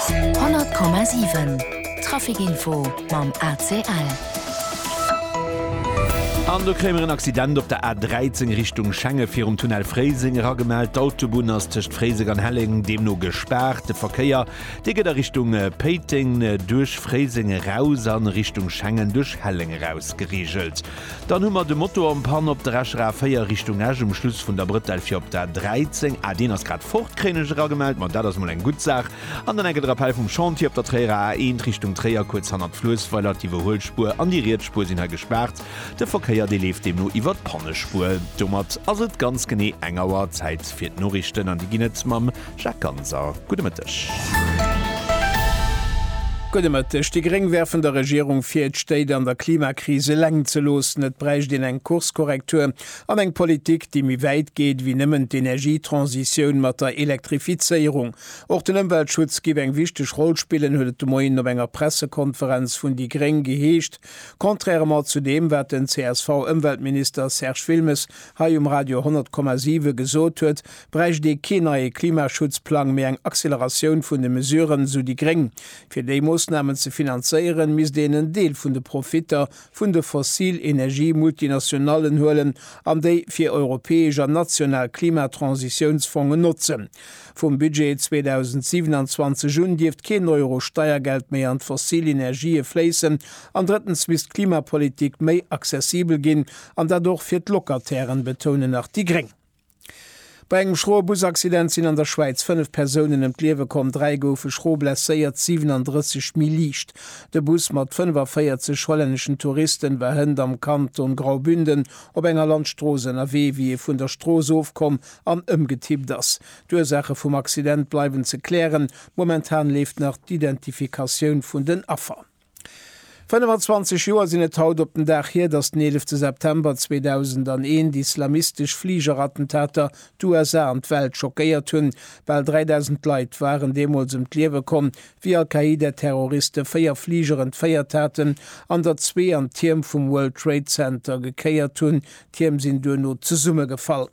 100,7 Traficinfo mam ACL. An do kréie mer en Accident op der A13 Richtung Schengen, virum Tunnel Fréiseng eragemellt. D'Autobunn ass tëscht Fréiseng an Helleng deemno gespaart. De Verkéier, dee gëtt a Richtung Péiteng duerch Fréiseng eraus a Richtung Schengen duerch Helleng eraus gereegelt. Dann hu mer de Motor en panne op der rechter A4 Richtung Esch um Schluss vun der Brëtell fir op d'A13, ah deen ass grad fort, kréien ech eragemellt, ma dat ass mol eng gutt Saach, an dann enke de Rappell vum Chantier op der Tréierer A1 Richtung Tréier kuerz hannert Fluessweiler, d'Iwwerhuelspuer an déi riets Spuer sinn hei gespaart, de Verkéier dee leeft deemno iwwer d'Pannespuer. Domat ass et ganz genee eng Auer Zäit fir d'Noriichten an déi ginn et mam. Jacques Ganser, Gudde Mëtteg. Gudde Mëtteg. Déi Gréng werfen der Regierung vir, d'Stéit an der Klimakris eleng ze loossen. Et bräicht een eng Kurskorrektur an eng Politik, déi méi wäit geet wéi nëmmen d'Energietransitioun mat der Elektrifizéierung. Och den Ëmweltschutz géif eng wichteg Roll spillen, huet et de Moien op enger Pressekonferenz vun déi Gréng geheescht, contrairement zu deem, wat den CSV-Ëmweltminister Serge Wilmes hei um Radio 100,7 gesot huet, Bräicht ee kee neie Klimaschutzplang, mee eng Acceleratioun vun de Mesuren, sou déi Gréng. Fir déi Moossnamen ze finanzéieren, misst een en Deel vun de Profitter vun de fossil Energie-Multinationallen huelen an déi fir europäesch an national Klimatransitiounsfongen notzen. Vum Budget 2027 un dierft keen Euro Steiergeld méi an d'fossil Energië fléissen. An drëttens misst d'Klimapolitik méi accessibel ginn, an dat och fir d'Locatairen, betounen nach déi Gréng. Bei engem schroe Busaccident sinn an der Schwäiz fënnef Persounen ëm d'Liewe komm, dräi goufe schro blesséiert, 37 méi liicht. De Bus mat 45 hollänneschen Touristen war hënt am Kanton Graubünden op enger Landstrooss ënnerwee, wéi e vun der Strooss ofkomm an ëmgetippt ass. D'Ursaache vum Accident bleiwen ze klären. Momentan leeft nach d'Identifikatioun vun den Affer. 25 Joer sinn et haut op den Dag hier, datt den 11 September 2001 d'islamistesch Fligerattentater d'USA an d'Welt schockéiert hunn. Bal 3.000 Leit waren deemools ëm d'Liewe komm, wéi Al-Qaida-Terroriste véier Fliger entféiert haten an der zwee an d'Tierm vum World Trade Center gekéiert hunn. D'Tierm sinn duerno zesummegefall.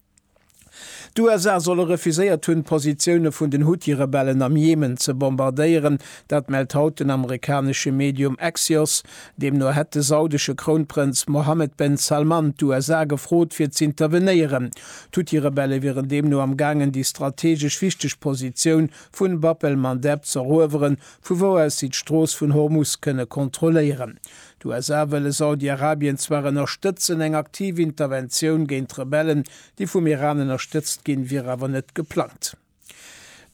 D'USA solle refuséiert hunn, d'Positioune vun den Huthi-Rebellen am Jemen ze bombardéieren. Dat mellt haut den amerikanesche Medium Axios. Deemno hätt de saudesche Krounprënz Mohammed ben Salman d'USA gefrot, fir z'intervenéieren. D'Huthi-Rebelle wieren deemno am gaangen, déi strategesch wichteg Positioun vu Bab el-Mandeb z'erueweren, vu wou aus si d'Strooss vun Hormus kënne kontrolléieren. D'USA wëlle Saudi-Arabien zwar ënnerstëtzen, eng aktiv Interventioun géint d'Rebellen, déi vum Iran ënnerstëtzt ginn, wier awer net geplangt.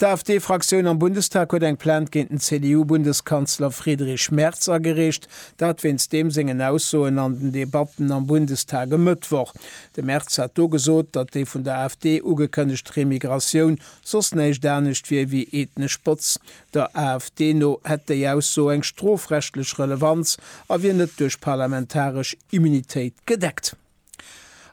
D'AfD-Fraktioun am Bundestag huet eng Plainte géint den CDU-Bundeskanzler Friedrich Merz agereecht, dat wéinst deem sengen Aussoen an den Debatten am Bundestag e Mëttwoch. De Merz hat do gesot, datt déi vun der AfD ugekënnegt Remigratioun soss näischt anescht wier ewéi ethnesch Botzen. Der AfD no hätt déi Ausso eng strofrechtlech Relevanz a wier net duerch parlamentaresch Immunitéit gedeckt.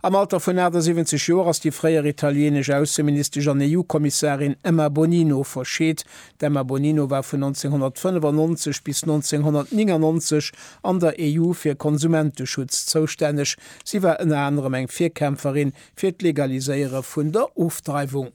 Am Alter vun 78 Joer ass déi fréier italieenesch Ausseministesch an EU-Kommissarin Emma Bonino verscheet. D'Emma Bonino war vun 1995 bis 1999 an der EU fir Konsumenteschutz zoustänneg. Si war ënner anerem eng Virkämpferin fir d'Legaliséiere vun der Ofdreiwung.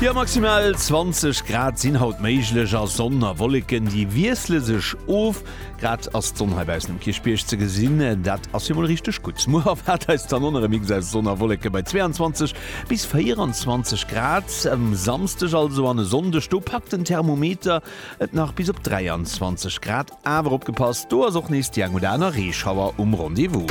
Jo, maximal 20 Grad sinn haut méiglech a Sonn a Wolleken, déi wiessle sech of. Grad ass d'Sonn hei baussen um Kierchbierg ze gesinn, dat ass jo mol richteg gutt. Muer erwaart eis dann onerem Mix aus Sonn a Wolleke bei 22 bis 24 Grad. Um Samsdeg also an e Sonndeg, do packt den Thermometer et nach bis op 23 Grad. Awer opgepasst, do ass och nees déi eng oder aner Reeschauer um Rendez-vous.